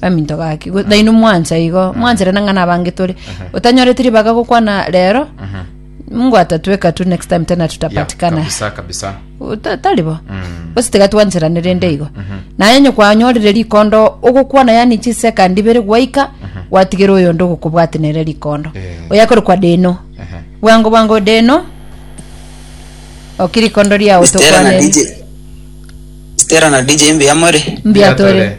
baminto gaki go- nainwe mwancha igo mwancherana ng'a nabange tore otanyoreti ribaga gokwana rero mungu atatweka tu next time tena Ya, tutapatikana kabisa kabisa Uta- taribo Mm. gose tiga twancherane rende igo naye onye kwanyorire rikondo ogokwana yani chisekandi ibere gwaika gwatigere oyo onde ogokobwati nere rikondo Eh. oyakore kwa deno Ehe. bwango bwango deno oki rikondo riao Stella na tokwaneri DJ Stella na DJ mbuya more mbiatore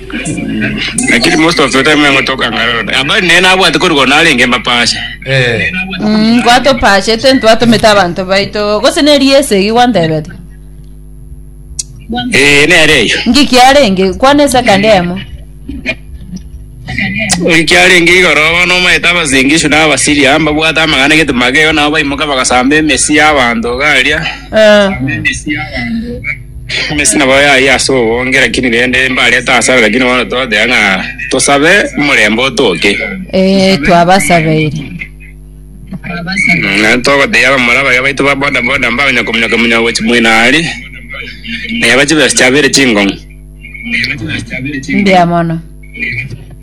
Lakini most of the time yango toka ngarora. Abari nene abwate kori gono arenge mapashe. Eh. Mm, kwatopachete ntwatomete abanto baito gose neri ese egi gwantebete Eh, nere eyo. nki kiarenge kwana esa kandi emo Ori kiarenge igoro bono omaete abasingishu na abasiri amba bwate amagana gete mageo nabo baimoka bagasamba emesi y'abanto garia. Eh, Emesina bao yaye ase obonge, lakini rende mbarete asare, lakini bono toteba ng'a tosabe omorembe otoke. Ee, twabasabeire. Naende togotebia abamura baria baito ba boda boda mbakonya kominyoka minyoka gochia moino aria, na yaba chibesa chiabeire chingong'u. Mbuya mono.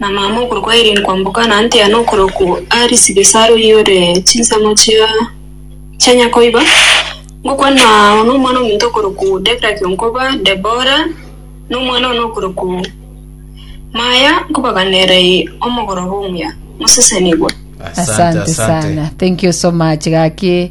na mama okorokwa Irene kwamboka na Antiano okorokwa Aris Gesaro oyore chinsemo chia chia nyakoiba, ngokwana ao nomwana ominto okorokwa Debra Kionkoba, Debora, na omwana one okorokwa Maya, nkobaganera eye omogoroba omuya. Mosesenigwe. Asante sana. Thank you so much gaki.